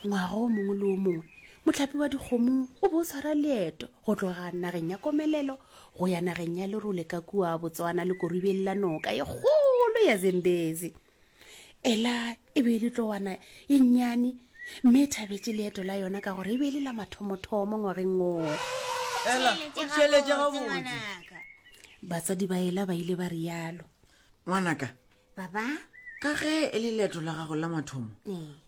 ngwaga o mongwe le o mongwe motlhapi wa dikgomo o bo o tshwara leeto go tloga nageng ya komelelo go ya nageng ya lerole ka kua botswana le koribeng la noka e kgolo ya zembezi ela e be e le tlowana e nnyane mme e thabetse leeto la yona ka gore e be e le la mathomothomo ngwageng oo batsadi ba ela ba ile ba rialo ngwanaka baba ka ge e le leeto la gago la mathomo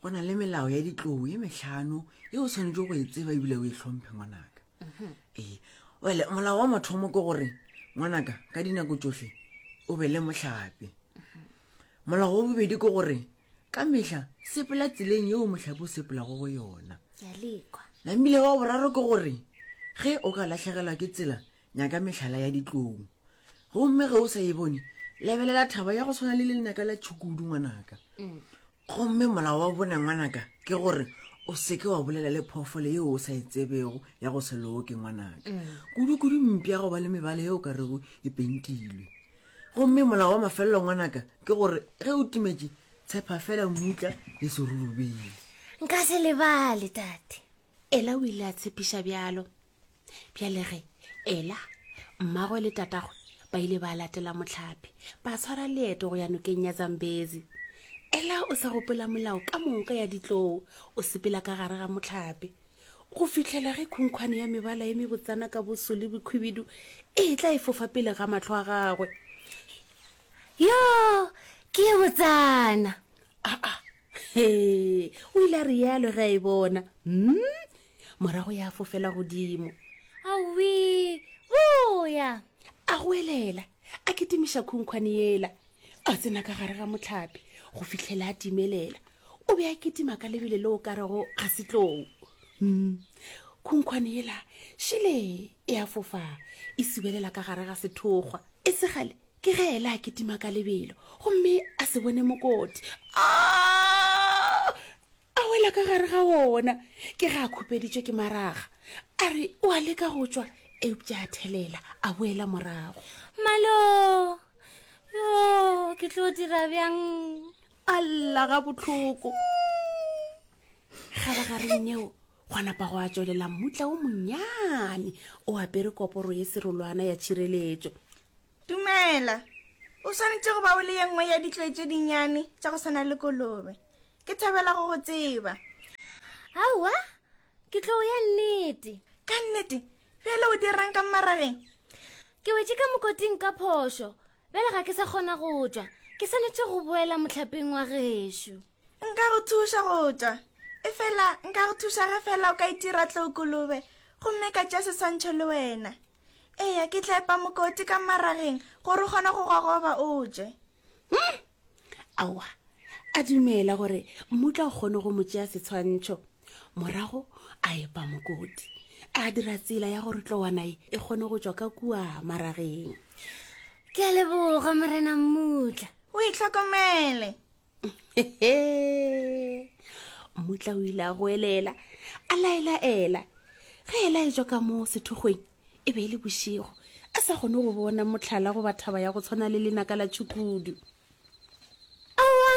go na le melao ya ditlou e metlhano e o tshwanetse go e tseba ebile o e tlhomphe ngwanaka mhm. ee wele molao wa mathomo ke gore ngwanaka ka dinako tsotlhe o be le motlhape mhm. molao wa bobedi ke gore ka metlha sepela tseleng yeo motlhape o sepelago go yona namile wa boraro ke gore ge o ka latlhegelwa ke tsela Nyaka mehlala ya ditlong. Gomme ge o sa e bone, lebelela thaba ya go tshwana le lenaka la tšhukudu ngwanaka. Mm. Gomme molao wa bone ngwanaka ke gore o seke wa bolela le phoofolo yeo o sa e tsebego ya go se loke ngwanaka mm. kudu-kudu mpi ya go ba le mebala yeo ka rego e pentilwe gomme molao wa mafelelo ngwanaka ke gore ge o timetše tshepa fela mmutla le serurubele nka se lebale tate ela o ile a tshepiša bjalo Bjale ge Ela, mmagwe le tatagwe ba ile ba latela mohlape, ba tshwara leeto go ya nokeng ya Zambezi. Ela o sa gopola molao ka moka ya ditlou, o sepela ka gare ga mohlape. Go fihlela ge khunkhwane ya mebala e mebotsana ka boso le bokhwibidu e tla e fofa pele ga mahlo a gagwe. Yo, ke e botsana! Aa, he, o ile a realo ge a e bona. Hmm, morago ya fofela godimo awee boya a go elela a kitimiša khunkhwane yela a tsena ka gare ga motlhapi go fitlhela a timelela o be a kitima ka lebele le o ka rego ga setlou mm. khunkhwane yela šele e a fofa e sibelela ka gare ga sethokgwa e segale ke ge ela a kitima ka lebelo gomme a se bone mokoti a A wela ka gare ga wona, ke ge a khupeditšwe ke maraga. A re o a leka go tšwa, eupša a thelela, a boela morago. Malo! Yo, ke tlo dira bjang? A lla ga bohloko. Kgabagareng yeo, gwa napa go a tšwelela mmutla o monnyane o apere koporo ye serolwana ya tšhireletšo. Dumela. O swanetše go ba o le ye nngwe ya ditloi tše dinnyane tša go swana le kolobe. Ke thabela go go tseba. Aowa, ke tlo ya nnete. Ka nnete? Bjale o dirang ka mmarageng? Ke wetše ka mokoting ka phošo. Bjale ga ke sa kgona go tšwa. Ke swanetše go boela mohlapeng wa gešo. Nka go thuša go tšwa. E fela nka go thuša ge fela o ka itira tlookolobe gomme ka tša seswantšho le wena. Eya, ke tla epa mokoti ka mmarageng gore o kgone go gogoba o tšwe. Hmm. aowa a dumela gore mmutla o kgone go mo tšea setshwantšho morago a epa mokoti a dira tsela ya gore tlowanae e kgone go tšwa ka kua marageng ke a leboga morena mmutla o e tlhokomele mmutla o ile a goelela a laelaela ge e laetšwa ka moo sethokgweng e be e le bošego a sa kgone go bona motlhala goba thaba ya go tshwana le lenaka la tšhukudu awa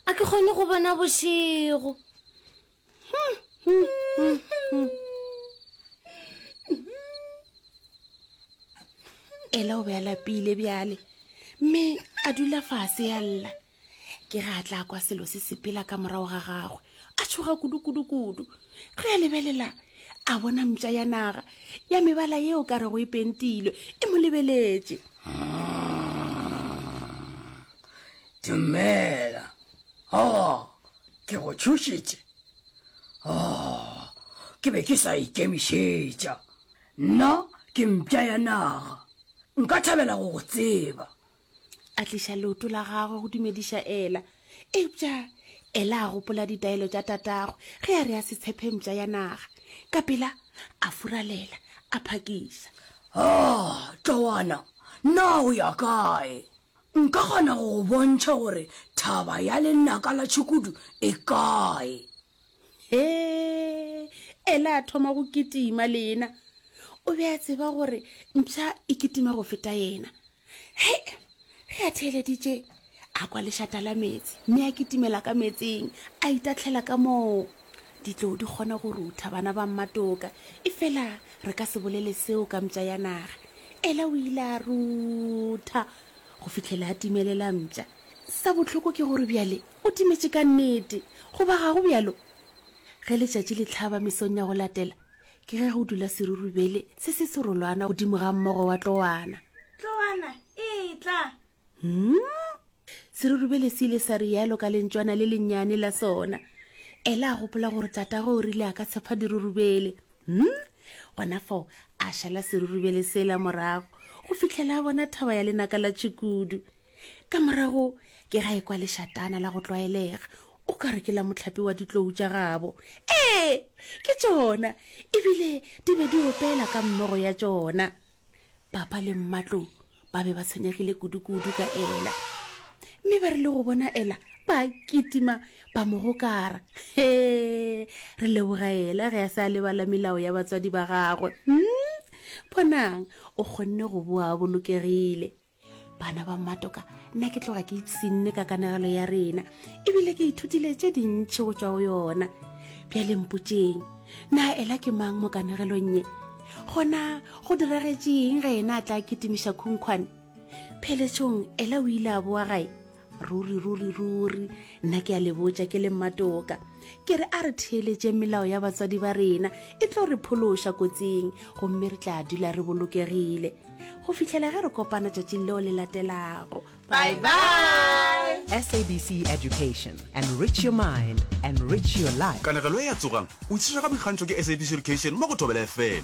a ke kgone go bona bošego hmm, hmm, hmm, hmm. ela o be a lapile bjale mme a dula fase ya lla ke ge a tla kwa selo se sepela ka morago ga gagwe a tshoga kudu-kudu-kudu ge a lebelela a bona mpša ya naga ya mebala yeo ka rego e pentilwe e mo lebeletše dumela o oh, ke go tšhošitše o oh, ke be ke sa ikemišetša nna ke mpša ya naga nka thabela go go tseba a tliša leoto la gagwe go dumediša ela eupša ela a gopola ditaelo tša tatagwe ge a re a se tshephe mpša ya naga ka pela a furalela a phakiša o oh, tlowana na o ya kae nka kgona go go bontšha gore thaba ya lenaka la tšhukudu e kae he ela a thoma go kitima lena o be a tseba gore mpša e kitima go feta yena he ge a theeleditše a kwa lešata la meetse mme a kitimela ka meetseng a itatlhela ka moo ditlou di kgona go rutha bana ba mmatoka e fela re ka se bolele seo ka mpša ya naga ela o ile a rutha go fitlhela a timelela mpša sa botlhoko ke gore bjale o timetše ka nnete goba ga go bjalo ge letšatši le tlhaba mesong ya go latela ke ge go dula serurubele se se serolwana godimo ga mmogo wa tlowana tlowana e tla hmm? serurubele se ile sa rialo ka lentšwana le lennyane la sona ela a gopola gore tatago o rile a ka tshepa dirurubele hmm? gona fao a šala serurubele sela morago go fitlhela a bona thaba ya lenaka la tšhikudu ka morago ke ga ekwa lešatana la go tlwaelega o ka re ke la motlhapi wa ditlou tša gabo ee ke tšona ebile di be di opela ka mmogo ya tšona papa le mmatlou ba be ba tshwenyegile kudu-kudu ka ela mme ba re le go bona ela ba kitima ba mo gokara he re leboga ela ge a se a lebala melao ya batswadi ba gagwe hmm? bonang o kgonne go boa bolokegile bana ba mmatoka nna ke tloga ke itsinne ka kanagelo ya rena ebile ke ithutile tše dintšhi go tswa go yona bjale mpotseng na ela ke mang mo kanagelong ye gona go diragetšeng ge ena a tla kitimiša khunkhwane pheletsong ela o ile a boa gae ruri ruri ruri nna ke a le botša ke le mmatoka ke re a re theeletšeng melao ya batswadi ba rena e tlo re phološa kotsing gomme re tla dula re bolokegile go fitlhela ge re kopana tšatšing leo le latelago bye bye sabc education and rich your mind and rich your life kanegelo e ya tsogang o itshwara boikgantšho ke sabc education mo go thobela fm